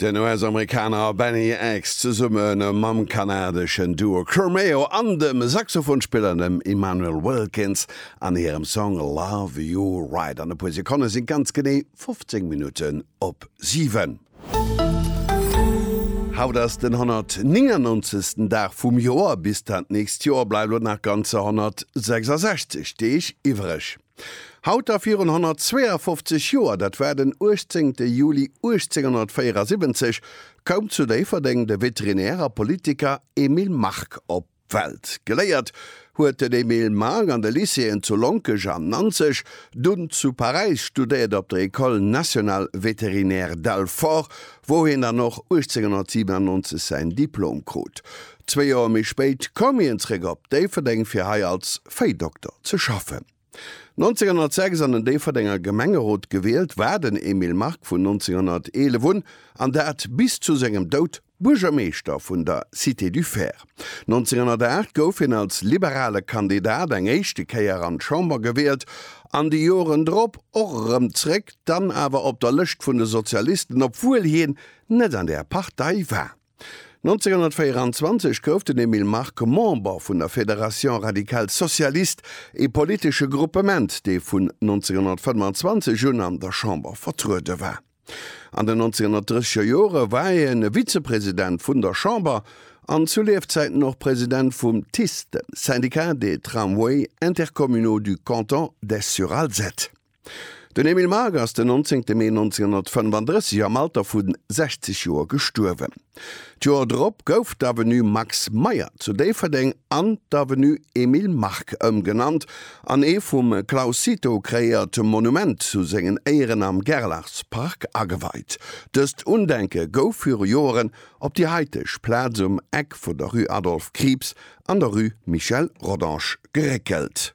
Den US-Amerikaner Benny X zesumme mam kanadeschen Duo Curmeo an dem Saxophonspiller dem Immanuel Wilkins an hirem Song Love You Right. An e puer Sekonne sinn ganz genee 15 Minutten op 7. Haut ass den 199. Dag vum Joer. Bis dat nächst Joer bleiwe lo nach ganzer 166 Deeg iwwereg. Haut a virun 152 Joer, dat war den 18 Juli 1874, koum zu Déifferdeng de Veterinär a Politiker Emile Mark op d'Welt. Geléiert huet den Emile Mark an de Lycéeën zu Lonkech an Nanzeg, dunn zu Paräis studéiert op der École nationale vétérinaire d'Alfort, wou hien dann och 1897 säin Diplom krut. Zwee Joer méi spéit koum hien zréck op Déifferdeng fir hei als Véidokter ze schaffen. 1906 an den Déifferdenger Gemengerot gewielt, war den Emile Mark vun 1911 un, an dat bis zu sengem Doud, Buergermeeschter vun der Cité du Fer. 1908 gouf hien als liberale Kandidat eng éischte Kéier an d'Chamber gewielt an déi Joren drop och erëm zréck, dann awer op der Lëscht vun de Sozialisten, obwuel hien net an där Partei war. 1924 gouf den Emile Mark Member vun der Fédération radicale socialiste, ee politesche Gruppement, dee vun 1925 un an der Chamber vertruede war. An den 1930er Jore war hien e Vizepresident vun der Chamber an zu Liefzäiten och President vum TICE, dem Syndicat des tramways intercommunaux du canton d'Esch-sur-Alzette. Den Emile Margue ass den 19 Mee 1935 am Alter vu 60 Joer gestuerwen. D'Joer drop gouf d'Avenue Max Meyer zu Déifferdeng an d'Avenue Emile Margue ëmgenannt an ee vum Claus Cito kreéiert Monument zu sengen Éieren am Gerlachspark ageweit. Dëst Undenke gouf viru Joeren op déi haiteg Plaz um Eck vun der Rue Adolphe Krieps an der Rue Michel Rodange geréckelt.